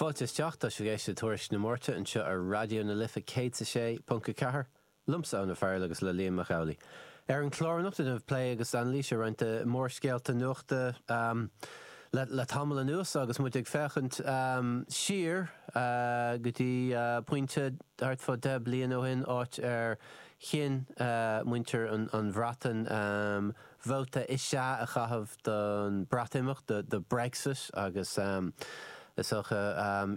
Fáilte isteach, tá sibh ag éisteacht le Tuairisc na Máirte anseo ar Raidió na Life 106.4, liomsa Eoin Ó Fearghail agus le Liam Mac Amhlaigh. Ar an chlár anocht déanfaimid plé agus anailís ar roinnt de mhórscéalta nuachta le tamall anuas agus muid ag féachaint siar go dtí pointe thart fá deich bliana ó shin, áit ar chinn muintir na Breataine, vóta is ea a chaitheamh don Bhreatimeacht, do Brexit, agus is dócha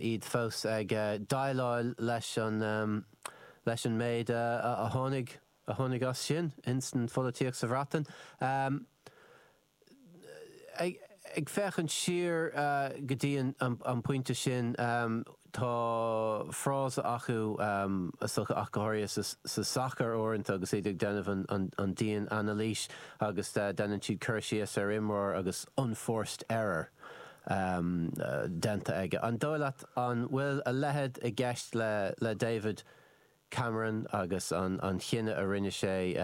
iad fós ag déileáil leis an méid a tháinig as sin ins an pholaitíocht sa Bhreatain. Ag féachaint siar go dtí an pointe sin, Tá frása acu, ach go háirithe sa sacar uaireanta agus iad ag déanamh an dian-anailís agus déanann siad cur síos ar imreoir agus unforced error déanta aige. An dóigh leat, an bhfuil a leithéid i gceist le David Cameron agus an chinneadh a rinne sé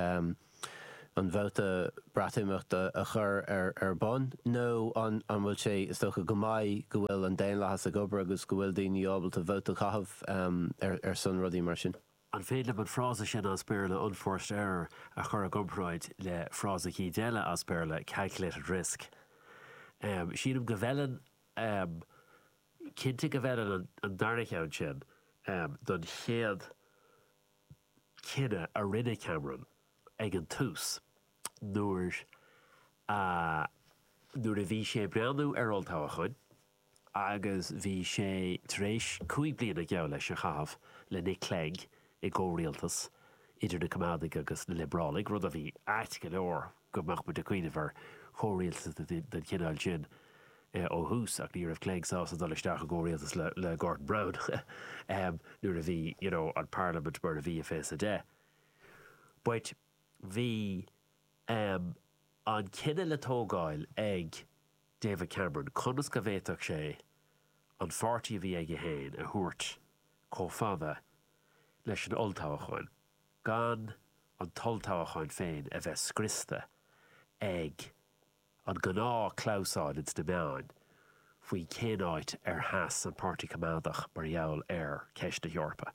an vóta Breatimeachta a chur ar bun, nó an bhfuil sé, is dócha go maith, go bhfuil an daonlathas ag obair agus go bhfuil daoine ábalta vóta a chaitheamh ar son rudaí mar sin? An féidir liom an frása sin as Béarla 'unforced error' a chur i gcomparáid le frása éicint eile as Béarla 'calculated risk'? Sílim go bhfeileann Sílim go bhfeileann an dara cheann sin don chéad chinneadh a rinne Cameron ag an tús nuair a nuair a bhí sé ag breathnú ar olltoghcháin agus bhí sé tar éis cúig bliana, geall leis, a chaitheamh le Nick Clegg i gcomhrialtas idir na Coimeádaigh agus na Liobrálaigh, rud a bhí ait go leor. go mbeadh muide ag cuimhneamh ar chomhrialtas den chineál sin ó thús, ach ní raibh Clegg sásta dul isteach i gcomhrialtas le Gordon Brown nuair a bhí you know an parlaimint mar a bhí i fiche a deich. But bhí ehm an cinneadh le tógáil ag David Cameron conas go bhféadfadh sé an páirtí a bhí aige féin a thabhairt chomh fada leis an olltoghchán. Gan an t-olltoghchán féin a bheith scriosta ag an gnáth clamhsáil ins na meáin faoi cén áit ar sheas an Páirtí Coimeádach mar gheall ar cheist na hEorpa.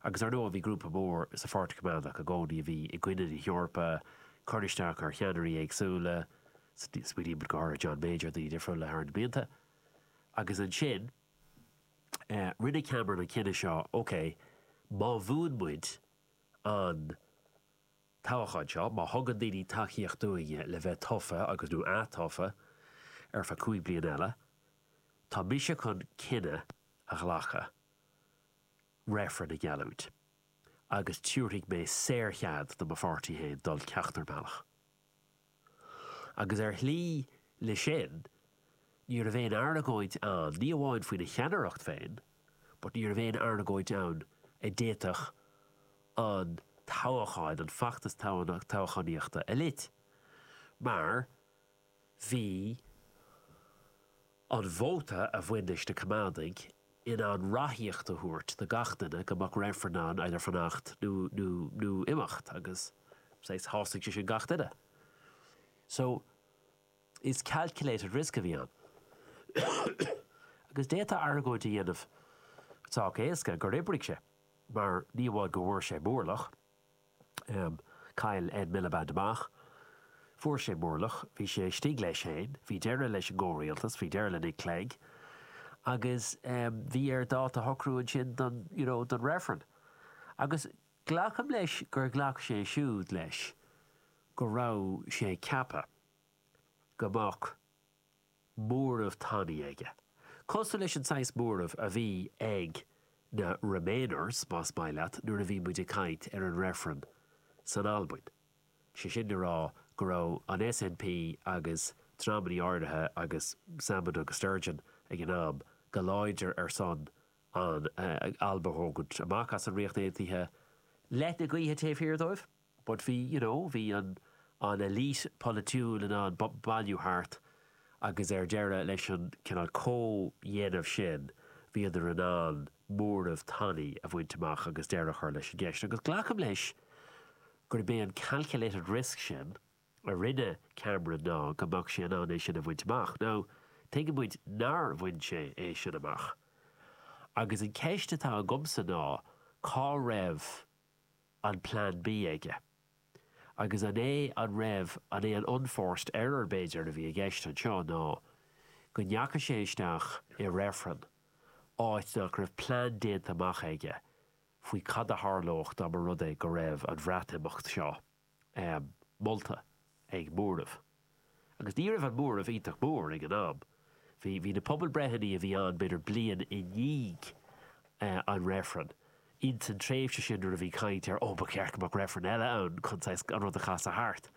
Agus ar ndóigh bhí grúpa mór sa Pháirtí Coimeádach i gcónaí a bhí i gcoinne na hEorpa, ag cur isteach ar cheannairí éagsúla, smaoinímid go háirithe ar John Major, daoine difriúla thar na blianta. Agus ansin. Rinne Cameron an cinneadh seo, OK, má bhuann muid an toghachán seo, má thugann daoine tacaíocht dúinne le bheith tofa agus, nó atofa ar feadh cúig bliana eile, tá mise chun cinneadh a ghlacadh, reifreann a gheallúint, agus tabharfaidh mé saorchead do mo pháirtí féin dul ceachtar bealach. Agus ar shlí leis sin, ní raibh aon argóint ann, ní amháin faoina cheannaireacht féin, but ní raibh aon argóint ann a d'fhéadfadh an toghachán, an feachtas toghchánaíochta a lot. Mar bhí. An vóta a bhain leis na Coimeádaigh, in ann ráthaíocht a thabhairt do gach duine go mbeadh reifreann ann idir fanacht nó, nó, nó imeacht agus saghas, shásaigh sé sin gach duine. So, is calculated risk a bhí ann. Agus d'fhéadfá argóint a dhéanamh sách éasca gur oibrigh sé, mar ní amháin go bhfuair sé móramh, Chaill Ed Miliband amach. Fuair sé móramh. Bhí sé istigh leis féin. Bhí deireadh leis an gcomhrialtas. Bhí deireadh le Nick Clegg. Agus bhí air dáta a shocrú ansin don, you know, don reifreann. Agus glacaim leis gur ghlac sé siúd leis go raibh sé ceaptha go mbeadh, móramh tanaí aige. Cosúil leis an saghas móramh a bhí ag na Remainers, más maith leat, nuair a bhí muid ag caint ar an reifreann san Albain, sé sin le rá go raibh an SNP agus dreamanna áirithe agus Salmond agus Sturgeon ag an am go láidir ar son an Alba a thógaint amach as an Ríocht Aontaithe leath na gaoithe taobh thiar dóibh. But bhí, you know, bhí an an elite polaitiúil in ann bailiú thart agus ar deireadh leis an cineál comhdhéanamh sin bhíodar in ann móramh tanaí a bhaint amach agus deireadh a chur leis an gceist. Agus glacaim leis gurb é an calculated risk sin a rinne Cameron ná go mbeadh sé in ann é sin a bhaint amach. Now, tuigeann muid nár bhain sé é sin amach. Agus an ceist atá agamsa ná cá raibh an Plean B aige? Agus an é an raibh an é an unforced error, b'fhéidir, a bhí i gceist anseo ná go ndeachaigh sé isteach i reifreann áit nach raibh plean déanta amach aige faoi cad a tharlódh dá mba rud é go raibh an Bhreatimeacht seo molta ag móramh. Agus ní raibh an móramh iontach mór ag an am. Bhí, bhí na pobalbreitheanna a bhí ann b'fhéidir bliain i ndiaidh an reifrinn, ins an tréimhse sin nuair a bhí caint ar oh ba cheart go mbeadh reifreann eile ann chun saghas an rud a chasadh thart.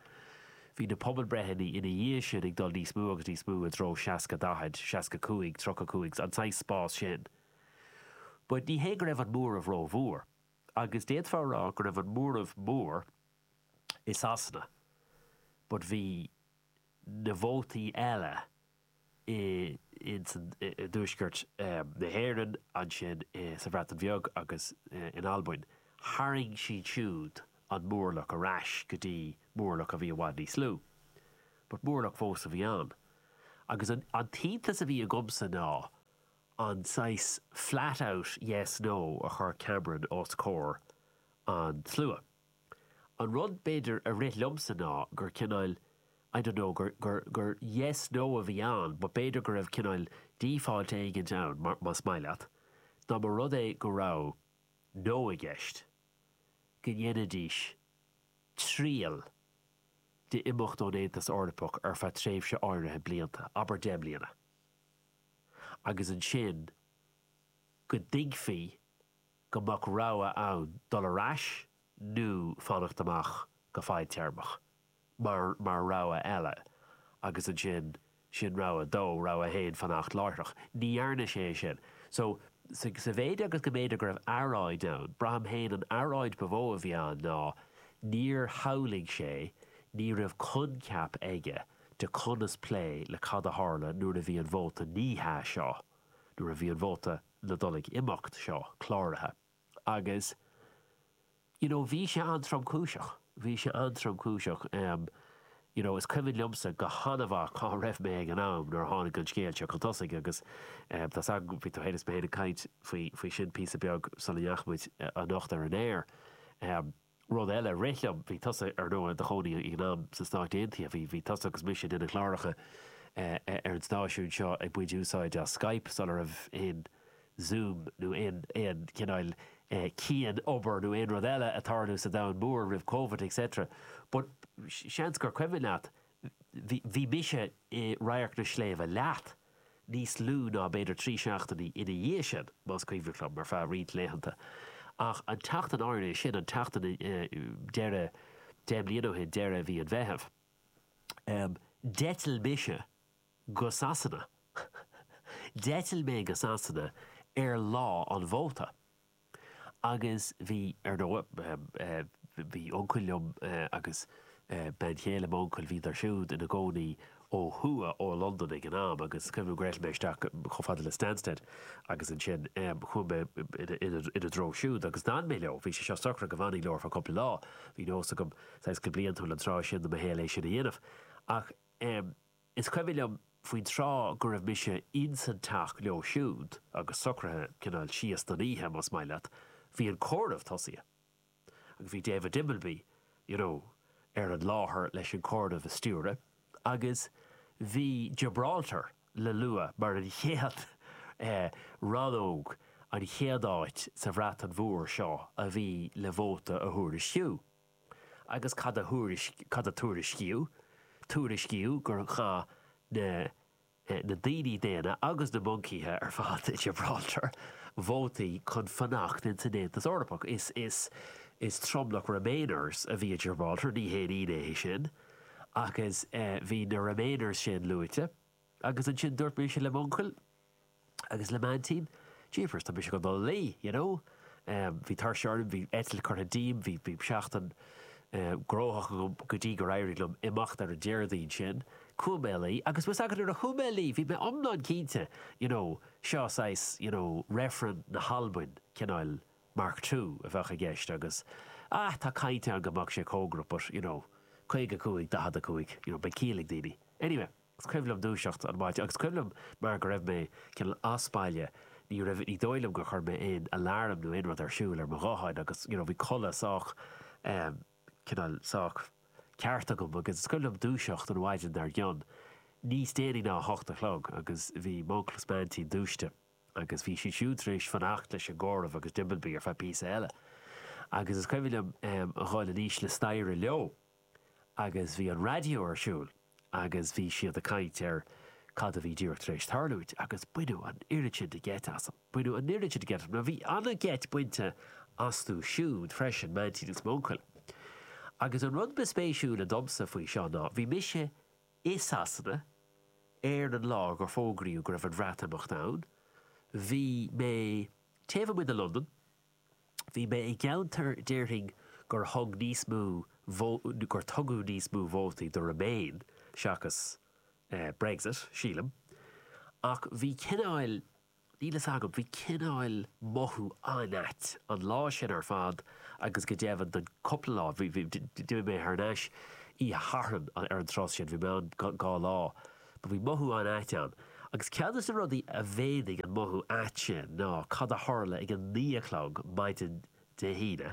Bhí na pobalbreitheanna ina dhiaidh sin ag dul níos mó agus níos mó i dtreo seasca daichead, seasca cúig, tríocha cúig, an saghas spás sin. But ní hé go raibh an móramh ró-mhór. Agus d'fhéadfá a rá go raibh an móramh mór i Sasana, but bhí na vótaí eile i dtuaisceart na hÉireann, agus sa Bhreatain Bheag agus in Albain, tharraing siad siúd an mórlach ar ais go dtí mórlach a bhí i bhfad níos lú. But mórlach fós a bhí ann. Agus an t-iontas a bhí agamsa ná, an saghas flat out yes, no a chuir Cameron os comhair an tslua. An rud, b'fhéidir, a rith liomsa ná gur cineáil, I don't know, gur, gur, gur yes, no a bhí ann but b'fhéidir go raibh cineáil default éigint ann, mar, más maith leat, dá mba rud é go raibh no i gceist, go ndéanfaidís triail d'imeacht ón Aontas Eorpach ar feadh tréimhse áirithe blianta, abair deich mbliana. agus ansin go dtuigfí go mbeadh rogha ann dul ar ais nó fanacht amach go fadtéarmach mar rogha eile agus ansin sin rogha a dó, rogha a haon fanacht láithreach. Ní dhearna sé é sin. So, sa mhéid agus go mb'fhéidir go raibh earráid ann, braithim féin an earráid ba mhó a bhí ann ná níor shamhlaigh sé, ní raibh coincheap aige, de chonas plé le cad a tharla nuair a bhí an vóta 'ní hea' seo, nuair a bhí an vóta ná dul ag imeacht seo cláraithe. Agus you know bhí sé an-tromchúiseach, bhí sé an-tromchúiseach. You know is cuimhin liomsa go han-mhaith cá raibh mé ag an am nuair a tháinig an scéal seo chun tosaigh agus tá's agam bhí tú féin is mé féin ag caint faoi sin píosa beag sula ndeachaigh muid anocht ar an aer. Rud eile a rith liom, bhí tusa, ar ndóigh, do chónaí ag an am sna Stáit Aontaithe, bhí, bhí tusa agus mise ag déanamh cláracha ar an stáisiún seo ag baint úsáid as Skype sula raibh aon Zoom nó aon, aon chineál cian-obair nó aon rud eile ag tarlú sa domhan mór roimh Covid etc. But seans gur cuimhin leat Bhí mise i Radharc na Sléibhte leat níos lú ná b'fhéidir trí seachtainí ina dhiaidh sin, más cuimhneach liom, ar feadh roinnt laethanta. Ach an tseachtain áirithe sin, an tseachtain deiridh deich mbliana ó shin, deireadh mhí an Mheithimh, d'eitil mise go Sasana. D'eitil mé go Sasana ar lá an vóta. Agus bhí, ar ndóigh. Bhí uncail liom agus bean chéile m'uncail, bhíodar siúd ina gcónaí ó thuaidh ó Londain ag an am agus cuimhin liom go raibh mé isteach chomh fada le Stansted agus ansin chuaigh mé ina dtreo siúd agus d'fhan mé leo. Bhí sé seo socraithe go bhfanfainn leo ar feadh cúpla lá. Bhí nós agam, saghas go bliantúil an tráth sin de mo shaol é sin a dhéanamh. Ach. Is cuimhin liom faoin tráth go raibh mise insan teach leo siúd agus socraithe cineál síos don oíche, más maith leat, bhí an comhaireamh tosaithe. Agus bhí David Dimbleby, you know, ar an láthair leis an comhaireamh a stiúradh agus bhí Gibraltar le lua mar an chéad eh, rannóg, an chéad áit sa Bhreatain Mhór seo a bhí le vóta a thuairisciú. Agus cad a tuairiscíodh? Tuairiscíodh gur chaith na daoine daonna agus na moncaithe ar fad i Gibraltar vótaí chun fanacht ins an Aontas Eorpach. Is tromlach Remainers a bhí i Gibraltar, ní haon ionadh é sin, agus bhí na Remainers sin luaite. Agus ansin dúirt mise le m'uncail agus le m'aintín, jeepers, tá mise chun dul a luí, you know. Bhí tuirse orm, bhí eitilt curtha díom, bhí seachtain gnóthach agam go dtí gur éirigh liom imeacht ar an Déardaoin sin. Chuaigh mé a luí. Agus bhfuil 's agat, nuair a chuaigh mé a luí, bhí mé iomlán cinnte, you know, seo saghas, you know, reifreann na hAlban, cineál Mark Two a bheadh i gceist agus, ah, tá caint ann go mbeadh sé cóngarach but, you know, 55, 45, you know, beidh ciall ag daoine. Anyway. Is cuimhin liom dúiseacht an mhaidin, agus cuimhin liom mar go raibh mé cineál as baile, ní raibh, ní dóigh liom gur chuir mé aon alarm nó aon rud ar siúl ar mo ghuthán agus you know bhí codladh sách ehm cineál sách ceart agam agus is cuimhin liom dúiseacht an mhaidin dar gcionn, níos déanaí ná a hocht a chlog agus bhí m'uncail is m'aintín dúisithe agus bhí siad siúd tar éis fanacht leis an gcomhaireamh agus Dimbleby ar feadh píosa eile agus is cuimhin liom ehm a dhul anuas an staighre leo agus bhí an raidió ar siúl agus bhí siad ag caint ar cad a bhí díreach tar éis tarlúint, agus baineadh an oiread sin de gheit asam. Baineadh an oiread sin de gheit asam, bhí an-gheit bainte astu siúd freisin, m'aintín agus m'uncail. Agus an rud ba spéisiúla domsa faoi seo ná, bhí mise i Sasana ar an lá gur fógraíodh go raibh an Bhreatimeacht ann, bhí mé taobh amuigh de Londain, Bhí mé i gceantar, déarfainn, gur thug níos mó, gur tugadh níos mó vótaí do Remain seachas Brexit, sílim. Ach bhí cineáil, níl fhios agam, bhí cineáil mothú an-ait an lá sin ar fad agus go deimhin don cúpla lá, d'imigh mé thar n-ais oíche Sathairn ar an tráth sin, bhí mé ann dhá lá. Do bhí mothú an-ait ann, agus ceann de na rudaí a mhéadaigh an mothú ait sin ná cad a tharla ag a naoi a chlog maidin Dé hAoine,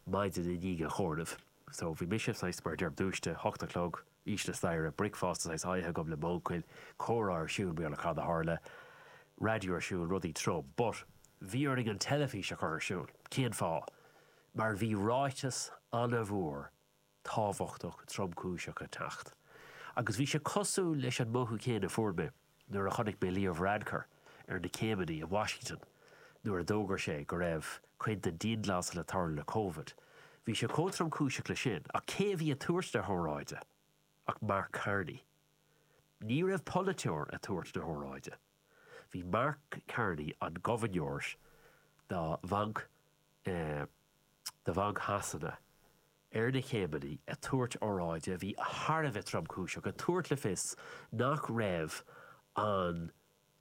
maidin i ndiaidh an chomhairimh. So, bhí mise, saghas, mar a deirim, dúiste, hocht a chlog, thíos staighre, bricfeasta, saghas, ite agam le m'uncail, comhrá ar siúl, Méala Cad a tharla? raidió ar siúl, rudaí trom. But, bhí orainn an teilifís a chur ar siúl. Cén fáth? Mar bhí ráiteas an-mhór. tábhachtach tromchúiseach ag teacht agus bhí sé cosúil leis an mothú céanna a fuair mé nuair a chonaic mé Leo Varadkar ar na céimeanna i Washington nuair a d'fhógair sé go raibh cuid de dhianghlasáil ag tarlú le Covid. bhí sé chomh tromchúiseach leis sin ach cé a bhí ag tabhairt na hóráide ach Mark Carney. Ní raibh polaiteoir ag tabhairt na hóráide. Bhí Mark Carney, an gobharnóir do Bhanc Shasana, Ar na céimeanna ag tabhairt óráide a bhí thar a bheith tromchúiseach, ag tabhairt le fios nach raibh an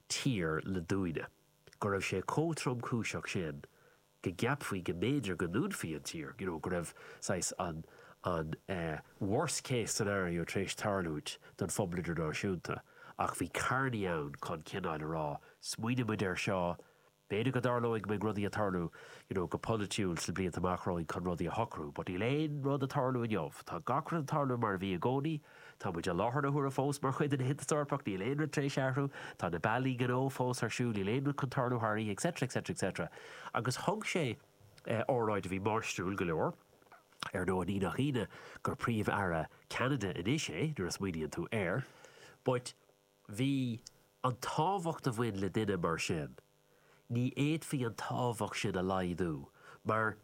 tír le dúnadh, go raibh sé chomh tromchúiseach sin go gceapfaí go mb'fhéidir go ndúnfaí an tír, you know, go raibh saghas an an worst case scenario tar éis tarlúint don phobal idirnáisiúnta. Ach bhí Carney ann chun cineáil a rá, smaoinigh muid air seo, B'fhéidir go dtarlóidh go mbeidh rudaí ag tarlú, you know, go polaitiúil sna blianta amach romhainn chun rudaí a shocrú, but níl aon rud ag tarlú inniu. Tá gach rud ag tarlú mar a bhí i gcónaí. Tá muid i láthair na huaire fós mar chuid den Aontas Eorpach, níl aon rud tar éis athrú. Tá na bealaí gnó fós ar siúl, níl aon rud chun tarlú thar oíche, etc. etc. etc. Agus thug sé óráid a bhí máistriúil go leor. Ar ndóigh, ní nach ionadh gur Príomh-Aire Cheanada anois é, nuair a smaoiníonn tú air. But. Bhí an tábhacht a bhain le duine mar sin, ní fhéadfaí an tábhacht sin a laghdú, mar,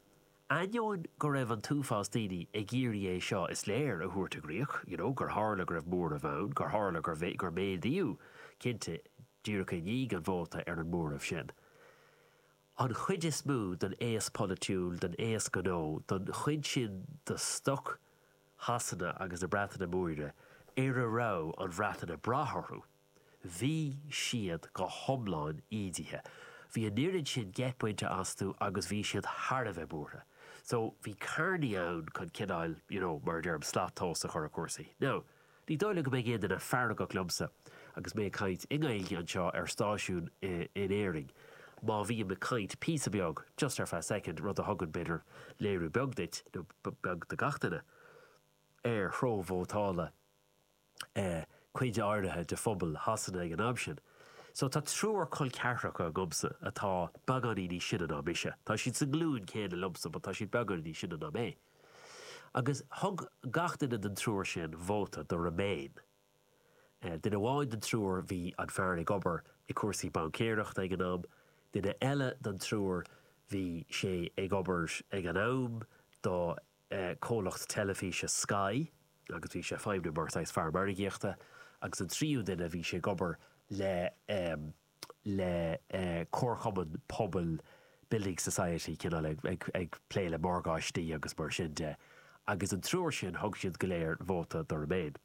ainneoin go raibh an t-uafás daoine ag iarraidh é seo, is léir, a thabhairt i gcríoch, you know, gur tharla go raibh móramh ann, gur tharla gur, gur méadaíodh, cinnte, díreach i ndiaidh an vóta, ar an móramh sin. an chuid is mó den aos polaitiúil, den aos gnó, den chuid sin de stoc Shasana agus na Breataine Móire ar a raibh an Bhreatain ag brath orthu, bhí siad go hiomlán ídithe. Bhí an oiread sin geit bainte astu agus bhí siad thar a bheith buartha. So, bhí Carney ann chun cineáil, you know, mar a deirim, slat tomhais a chur ar chúrsaí. Now. Ní dóigh liom go mbeidh aon duine feargach liomsa agus mé ag caint i nGaeilge anseo ar stáisiún in Éirinn, má bhím ag caint píosa beag, just ar feadh soicind, rud a thugann, b'fhéidir, léiriú beag duit, nó beag do gach duine, ar threo vótála cuid áirithe de phobal Shasana ag an am sin. So, tá triúr col ceathracha agamsa atá beagáinín níos sine ná mise. Tá siad sa nglúin céanna liomsa, but tá siad beagáinín níos sine ná mé. Agus thug gach duine den triúr sin vóta do Remain. Duine amháin den triúr, bhí an fear ag obair i gcúrsaí baincéireachta ag an am, duine eile den triúr, bhí sé ag obair ag an am do comhlacht teilifíse Sky agus bhí sé ag feidhmiú mar saghas fear margaíochta, agus an tríú duine, bhí sé ag obair le le comharchumann pobail, building society, cineál ag, ag, ag plé le morgáistí agus mar sin de. Agus an triúr sin, thug siad go léir vóta do Remain.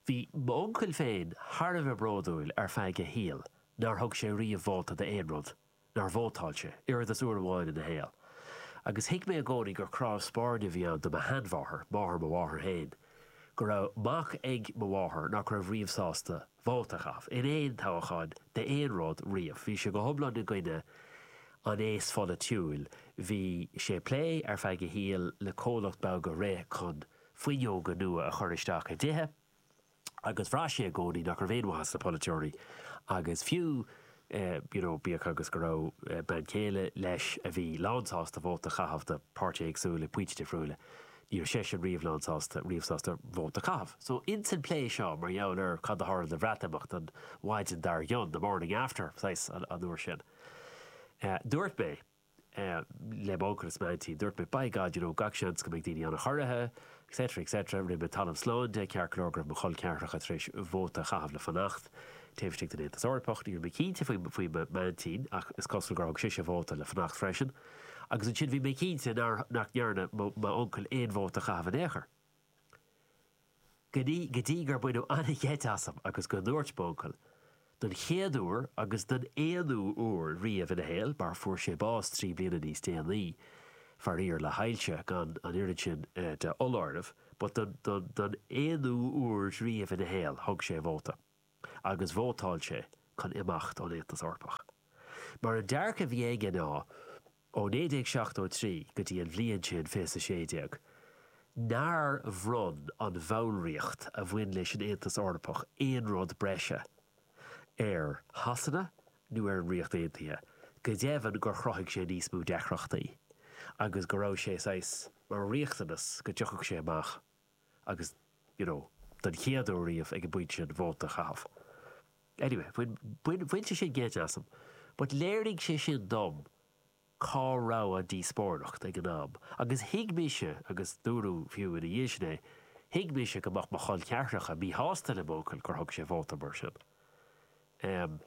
Bhí m'uncail féin thar a bheith bródúil ar feadh a shaoil nár thug sé riamh vóta d'aon rud nár vótáil sé, oiread is uair amháin ina shaol. Agus thuig mé i gcónaí gur crá spairne a bhí ann do mo sheanmháthair, máthair mo mháthar féin, go raibh mac ag mo mháthair nach raibh riamh sásta vóta a chaitheamh, in aon toghachán, d'aon rud, riamh. Bhí sé go hiomlán i gcoinne an aos pholaitiúil. Bhí sé ag plé, ar feadh a shaoil, le comhlacht beag a rith chun fuinneoga nua a chur isteach i dtithe, agus bhraith sé i gcónaí nach raibh aon mhaith sna polaiteoirí agus fiú you know bíodh agus go raibh bean chéile leis a bhí lánsásta vóta a chaitheamh do páirtithe éagsúla ag pointí difriúla ní raibh seisean riamh lánsásta riamh sásta vóta a chaitheamh. So i ndeireadh an plé seo mar gheall ar cad a tharla don Bhreatimeacht an mhaidin dar gcionn, the morning after, saghas, an uair sin, dúirt mé. le mo uncail is m'aintín. Dúirt mé, By God, you know, gach seans go mbeidh daoine an-chorraithe, et cetera, et cetera. Rinne mé talamh slán de, ceart go leor, go raibh mo chol ceathracha tar éis vóta a chaitheamh le Fanacht taobh istigh den Aontas Eorpach. Ní raibh mé cinnte faoi, faoi m'aintín, ach is cosúil gur thug sise vóta le Fanacht freisin. Agus ansin bhí mé cinnte nár, nach ndearna mo, m'uncail aon vóta a chaitheamh in aon chor. go dtí gur baineadh an-gheit asam agus go ndúirt m'uncail, don chéad uair agus don aonú uair riamh ina shaol, mar fuair sé bás trí bliana níos déanaí, faraor, le hailse, gan an oiread sin de fholáireamh, but don don aonú uair riamh ina shaol, thug sé a vóta, agus vótáil sé chun imeacht ón Aontas Eorpach. Mar an dearcadh a bhí aige ná. Ó 1973 go dtí an bhliain sin, 2016, nár bhronn an bhallraíocht a bhain leis an Aontas Eorpach aon rud breise ar Shasana nó ar an Ríocht Aontaithe, go deimhin gur chruthaigh sé níos mó deacrachtaí agus go raibh sé saghas mar riachtanas go dtiocfadh sé amach. agus, you know, den chéad uair riamh ag an bpointe sin, vóta a chaitheamh. Anyway, bhain, bhain sé sin geit asam, but léirigh sé sin dom cá raibh an díospóireacht ag an am agus thuig mise, agus dúradh fiú ina dhiaidh sin é, thuig mise go mbeadh mo chol ceathracha míshásta le m'uncail gur thug sé vóta mar sin. Em.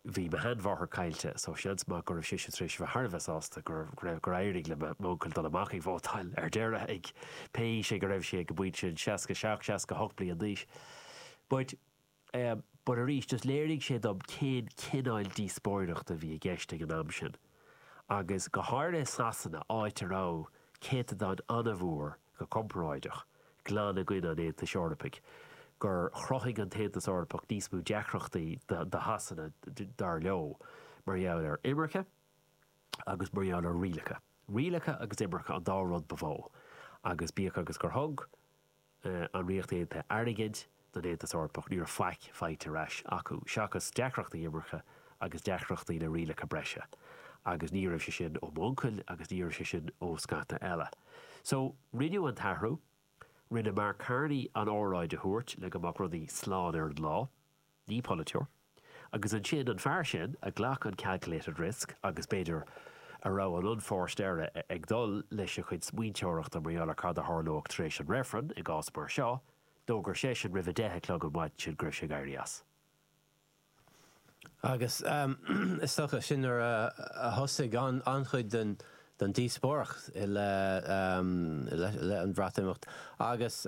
Bhí mo sheanmháthair caillte so seans maith go raibh sise tar éis a bheith thar a bheith sásta gur éirigh le m'uncail dul amach ag vótáil ar deireadh ag pé aois go raibh sé ag an bpointe sin, 67, 68 bliain d'aois. But eh but arís just léirigh sé dom cén cineál díospóireachta a bhí i gceist ag an am sin. agus go háirithe i Sasana, áit a raibh céatadán an-mhór, go comparáideach, glan i gcoinne an Aontais Eorpaigh, gur chruthaigh an tAontas Eorpach níos mó deacrachtaí do Shasana, dar leo, mar gheall ar imirce agus mar gheall ar rialacha. Rialacha agus imirce an dá rud ba mhó, agus bíodh agus gur thug. an Ríocht Aontaithe airgead don Aontas Eorpach, ní raibh faic faighte ar ais acu, seachas deacrachtaí imirce agus deacrachtaí le rialacha breise. Agus ní raibh sé sin ó m'uncail agus ní raibh sé sin ó scata eile. So, rinneadh an t-athrú. Rinne Mark Carney an óráid a thabhairt le go mbeadh rudaí slán ar an lá. Ní polaiteoir. Agus ansin, an fear sin, a ghlac an calculated risk agus, b'fhéidir, a raibh an unforced error ag dul lena chuid smaointeoireachta mar gheall ar cad a tharlódh tar éis an reifrinn, i gcás mar seo, d'fhógair seisean roimh a deich a chlog an mhaidin sin go raibh sé ag éirí as. Agus, is dócha, sin nuair a thosaigh an-chuid den díospóireacht i leith an Bhreatimeacht. Agus.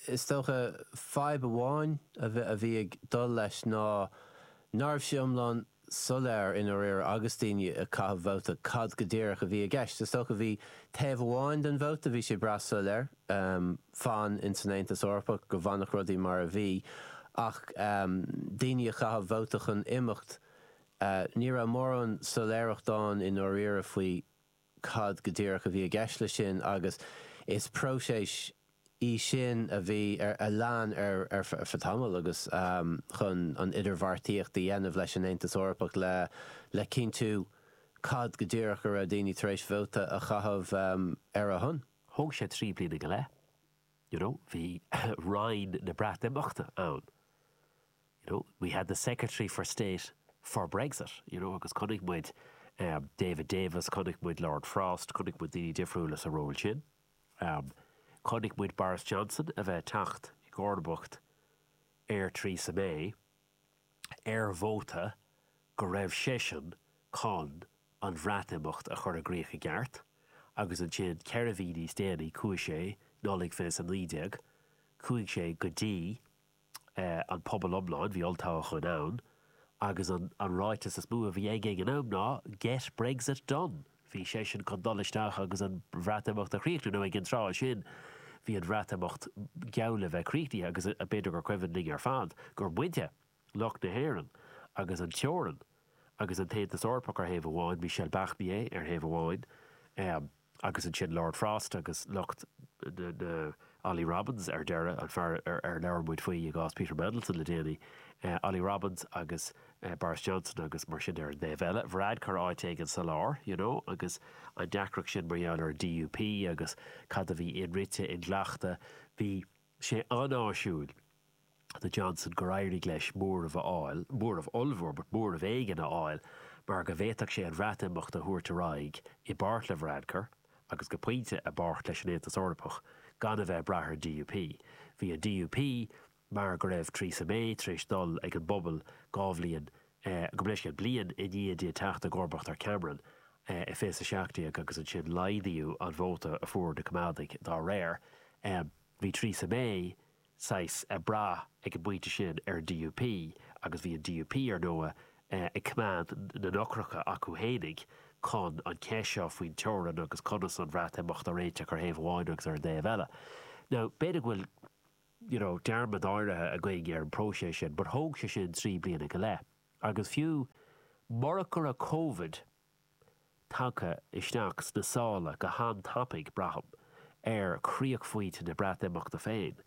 Is dócha, fadhb amháin a bhí ag dul leis ná ná raibh sé iomlán soiléir i ndáiríre agus daoine ag caitheamh vóta cad go díreach a bhí i gceist. Is dócha bhí taobh amháin den vóta, bhí sé breá soiléir, fan in san Aontas Eorpach, go bhfanfadh rudaí mar a bhí, ach daoine a chaith vóta chun imeacht, ní raibh mórán soiléireacht ann i ndáiríre faoi cad go díreach a bhí i gceist leis sin agus is próiseas í sin a lean ar feadh tamaill agus chun an idirbheartaíocht a dhéanamh leis an Aontas Eorpach le, le cinntiú cad go díreach a raibh daoine tar éis vóta a chaitheamh ar a shon. Thóg sé trí bliana go leith, you know, bhí Roinn na Breatimeachta ann, you know, we had the Secretary of State for Brexit, you know, agus chonaic muid David Davis, chonaic muid Lord Frost, chonaic muid daoine difriúla sa ról sin. Chonaic muid Boris Johnson a bheith ag teacht i gcomharbacht ar Theresa May ar vóta go raibh seisean chun an Bhreatimeacht a chur i gcrích i gceart agus ansin ceithre mhí níos déanaí, chuaigh sé, Nollaig 2019, chuaigh sé go dtí. an pobal iomlán, bhí olltoghcháin ann, agus an ráiteas is mó a bhí aige ag an am ná 'Get Brexit done'. Bhí seisean chun dul isteach agus an Bhreatimeacht a chríochnú, nó ag an tráth sin bhí an Bhreatimeacht geall le bheith críochnaithe agus b'fhéidir gur cuimhin linn ar fad gur muintir, lucht na hÉireann agus an teorainn agus an tAontas Eorpach ar thaobh amháin, Michel Barnier ar thaobh amháin agus ansin Lord Frost agus lucht na, Olly Robbins ar deireadh, an fear ar labhair muid faoi i gcás Peter Mandelson le déanaí, Olly Robbins agus Boris Johnson agus mar sin ar an dtaobh eile, Varadkar áit éigin sa lár, you know, agus an deacracht sin mar gheall ar an DUP agus cad a bhí inrite, inghlachta, bhí. sé an-áisiúil do Johnson gur éirigh leis móramh a fháil, ní móramh ollmhór, but móramh éigin a fháil, mar go bhféadfadh sé an Bhreatimeacht a thabhairt ar aghaidh i bpáirt le Varadkar, agus go pointe, i bpáirt leis an Aontas Eorpach, gan a bheith ag brath ar an DUP. Bhí an DUP, mar go raibh Theresa May tar éis dul ag an bpobal dhá bhliain go mbeifí, saghas, bliain i ndiaidh di teacht i gcomharbacht ar Cameron i fiche seacht déag agus ansin laghdaíodh an vóta a fuair na Coimeádaigh dá réir. Bhí Theresa May saghas ag brath ag an bpointe sin ar an DUP agus bhí an DUP, ar ndóigh, ag coimeád na n-eochracha acu fhéinig chun an cheist seo faoin teorainn agus conas an Bhreatimeacht a réiteach ar thaobh amháin agus ar an dtaobh eile. Now, b'fhéidir go bhfuil. you know, dearmad áirithe againn ar an bpróiseas sin but thóg sé sin trí bliana go leith agus fiú murach go raibh Covid tagtha isteach sna sála go han-tapaidh, braithim, ar chríochphointe na Breatimeachta féin,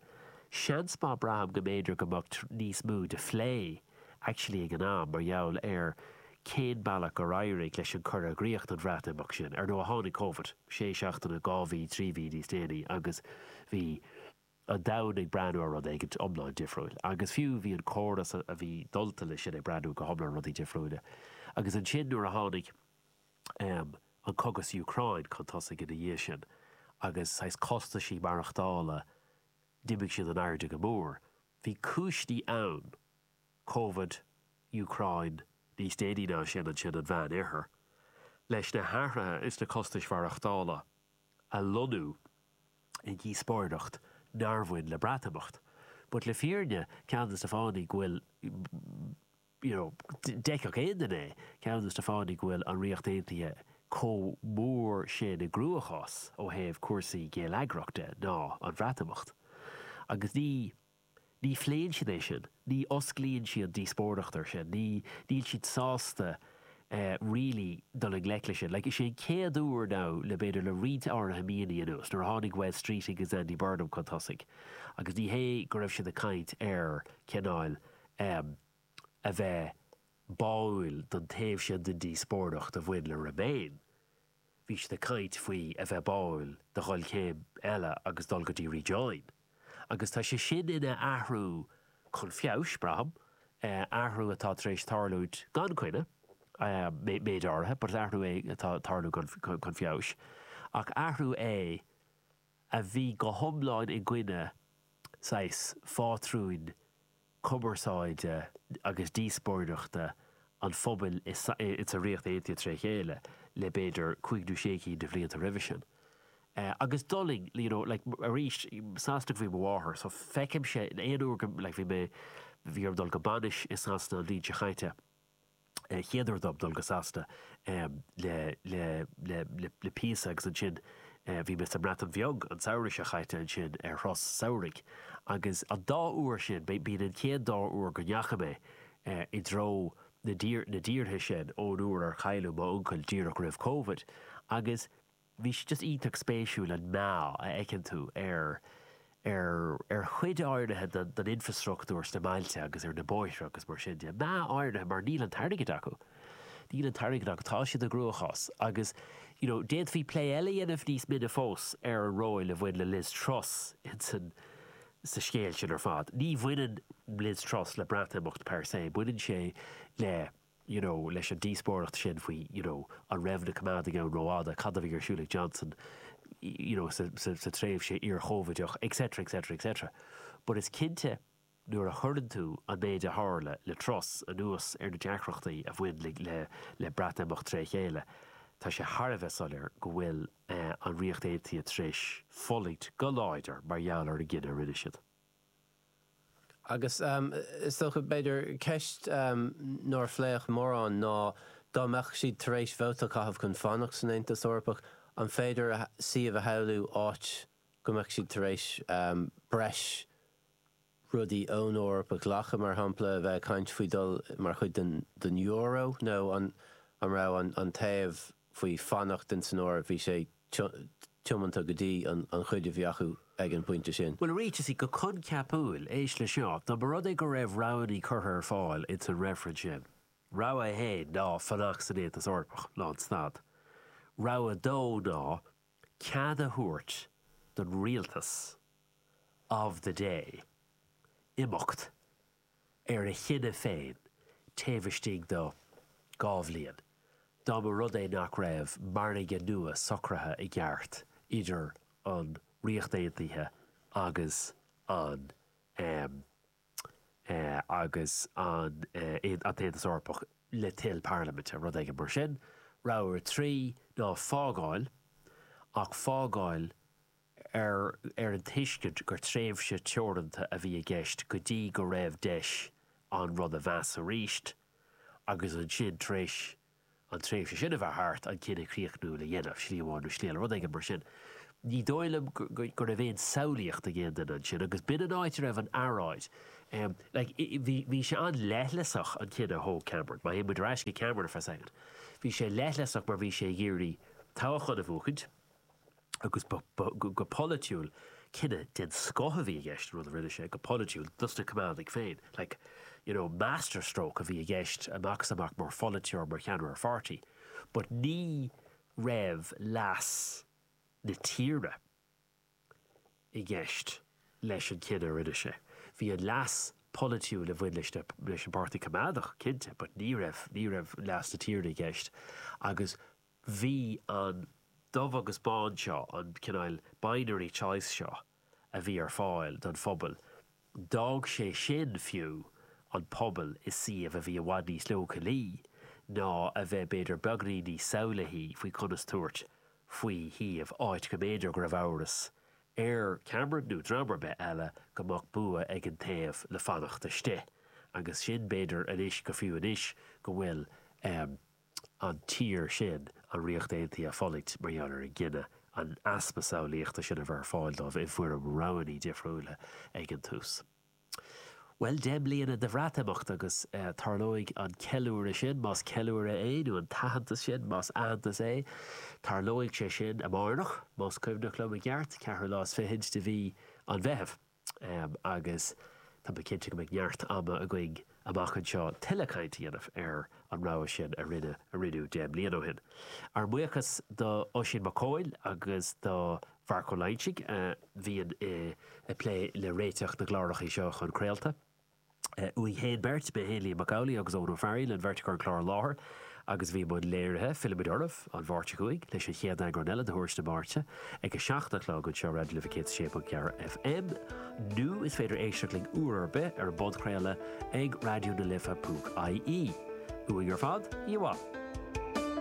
seans maith, braithim, go mb'fhéidir go mbeadh níos mó de phlé actually ag an am mar gheall ar cén bealach gur éirigh leis an cur i gcríoch don Bhreatimeacht sin. Ar ndóigh, tháinig Covid sé seachtaine, dhá mhí, trí mhí níos déanaí agus bhí. an domhan ag breathnú ar rud éigint iomlán difriúil. Agus fiú, bhí an córas a bhí dulta leis sin ag breathnú go hiomlán rudaí difriúile. Agus ansin nuair a tháinig ehm, an cogadh sa Úcráin chun tosaigh ina dhiaidh sin, agus saghas costaisí maireachtála, d'imigh siad in airde go mór. Bhí cúiseannaí ann, Covid, Úcráin, níos déanaí ná sin ansin an Meánoirthear, leis na hathruithe insna costais mhaireachtála. a lonnú i ndíospóireacht nár bhain le Breatimeacht. But le fírinne, ceann de na fáthanna go bhfuil, you know, d'fheicfeadh aon duine é, ceann de na fáthanna go bhfuil an Ríocht Aontaithe chomh mór sin i gcruachás ó thaobh cúrsaí geilleagair de ná an Bhreatimeacht. Agus ní. Ní phléann siad é sin, ní osclaíonn siad díospóireacht air sin, ní, níl siad sásta really dul i ngleic leis sin. Like, is é an chéad uair now le, b'fhéidir, le roinnt áirithe míonna anuas, nuair a tháinig Wes Streeting agus Andy Burnham chun tosaigh agus ní hé go raibh siad ag caint ar cineál ehm a bheith báúil don taobh sin den díospóireacht a bhain le remain, Bhí siad ag caint faoi a bheith báúil do dhul céim eile agus dul go dtí rejoin. Agus tá sé sin ina athrú chun feabhais, braithim, athrú atá tar éis tarlúint gan coinne, méid áirithe, but athrú é atá ag tarlú chun feabhais. Ach athrú é a bhí go hiomlán i gcoinne, saghas, phátrúin cumarsáide agus díospóireachta an phobail i sa Ríocht Aontaithe tré chéile le b'fhéidir cúig nó sé cinn de bhlianta roimhe sin. Agus d'fhulaing, you know, like arís Sasanach ab í mo mháthair so feicimse aon uair go like bhí mé bhí orm dul go bainis i Sasana an bhliain seo caite, chéad uair dom dul go Sasana le píosa agus ansin bhí mé sa mBreatain Bheag an samhradh seo caite ansin ar shos samhraidh agus an dá uair sin, b'in an chéad dá uair go ndeachaigh mé i dtreo na dtíortha sin ón uair ar cailleadh m'uncail díreach roimh Covid agus. Bhí sé just iontach spéisiúil an meath a fheiceann tú ar ar ar chuid áirithe den den infrastruchtúr sna mbailte agus ar na bóithre agus mar sin de. Meath áirithe mar níl an t-airgead acu. Níl an t-airgead acu. Tá siad i gcruachás agus you know d'fhéadfaí plé eile a dhéanamh níos mine fós ar an ról a bhain le Liz Truss insan sa scéal sin ar fad. Ní bhaineann Liz Truss le Breatimeacht per se, baineann sé le you know, leis an díospóireacht sin faoi, you know, an raibh na coimeádaigh ann rófhada, cad a bhí ar siúl ag Johnson, you know, sa tréimhse iar-Chovideach, etc, etc, etc. But is cinnte, nuair a chuireann tú an méid a tharla le Truss anuas ar na deacrachtaí a bhain le Breatimeacht tré chéile, tá sé thar a bheith soiléir go bhfuil an Ríocht Aontaithe tar éis fulaingt go láidir mar gheall ar an gcinneadh a rinne siad. Agus is dócha, b'fhéidir, ceist nár phléadh mórán ná, dá mbeadh siad tar éis vóta a chaitheamh chun fanacht san Aontas Eorpach, an féidir suíomh a shamhlú áit go mbeadh siad tar éis breis rudaí ón Eoraip a ghlacadh, mar shampla, a bheith ag caint faoi dhul mar chuid den euro, nó an raibh an taobh faoi fanacht in san Eoraip, bhí sé tiomanta go dtí an chuid a bhí acu ag an bpointe sin. Bhuel, ar a tús, go coincheapúil, éist leis seo, dá mba rud é go raibh roghannaí curtha ar fáil in san reifreann sin, rogha 1 ná fanacht san Aontas Eorpach, lán stad, rogha 2 ná cead a thabhairt don rialtas of the day imeacht ar a chinneadh féin taobh istigh de dhá bhliain, dá mba rud é nach raibh margadh nua socraithe i gceart idir an Ríocht Aontaithe agus an AE agus an, an tAontas Eorpach le toil parlaiminte, rud éigin mar sin. Rogha 3 ná fágáil, ach fágáil ar an tuiscint gur tréimhse teoranta a bhí i gceist go dtí go raibh deis an rud a mheas arís agus ansin, tar éis an tréimhse sin a bheith thart, an cinneadh críochnúil a dhéanamh, slí amháin nó slí eile, rud éigin mar sin. Ní dóigh liom go raibh aon samhlaíocht ag aon duine ansin agus b'in an áit a raibh an earráid. Bhí, bhí sé an-leithleasach, an cinneadh a thóg Cameron, má théann muid ar ais go Cameron for a second, bhí sé leithleasach mar bhí sé ag iarraidh toghchán a bhuachaint, agus go polaitiúil, cinneadh den scoth a bhí i gceist, an rud a rinne sé, go polaitiúil, dos na Coimeádaigh féin. Like, you know, master stroke a bhí i gceist amach is amach mar pholaiteoir, mar cheannaire ar pháirtí. But ní raibh leas na tíre i gceist leis an chinneadh a rinne sé. Bhí an leas polaitiúil a bhain leis na, leis an bPáirtí Coimeádach, cinnte, but ní raibh, ní raibh leas na tíre i gceist agus, Bhí an dubh agus bán seo, an cineál binary choice seo a bhí ar fáil don phobal, d'fhág sé sin, fiú, an pobal i suíomh a bhí i bhfad níos leochailí ná a bheith, b'fhéidir, beagní níos samhlaithí faoi conas tabhairt faoi shuíomh, áit go mb'fhéidir go raibh amhras ar Cameron, nó dream ar bith eile, go mbeadh bua ag an taobh le fanacht istigh. Agus sin, b'fhéidir, anois, go fiú anois go bhfuil, eh, an tír sin an Ríocht Aontaithe ag fulaingt mar gheall ar an gcinneadh, an easpa samhlaíochta sin a bheith ar fáil dóibh i bhfoirm roghannaí difriúla ag an tús. Bhuel, deich mbliana de Bhreatimeacht agus tarlóidh an ceiliúradh sin, más ceiliúradh é, nó an t-aitheantas sin, más aitheantas é, tarlóidh sé sin amárach, más cuimhneach liom i gceart, ceathrú lá is fichid de mhí an Mheithimh. Agus tá mé cinnte go mbeidh neart ama againn amach anseo tuilleadh caint a dhéanamh ar an rogha sin a rinneadh, a rinneadh deich mbliana ó shin. Ár mbuíochas d'Oisín Mac Cóil agus do Mharc Ó Loingsigh a bhíonn ag plé le réiteach na gclárachaí seo chun craolta. uainn féin beirt, mé féin, Liam Mac Amhlaigh agus Eoghan Ó Fearghaíl, an bheirt acu ag clár an láthair agus bhí i mbun léirithe, fillfimid oraibh, an Mháirt seo chugainn leis an chéad eagrán eile de Thuairisc na Máirte ag a seacht a chlog anseo ar Raidió na Life 106.4 FM nó is féidir éisteacht linn uair ar bith ar an bpodchraoladh ag raidiona-life.ie. Uainn ar fad, oíche mhaith.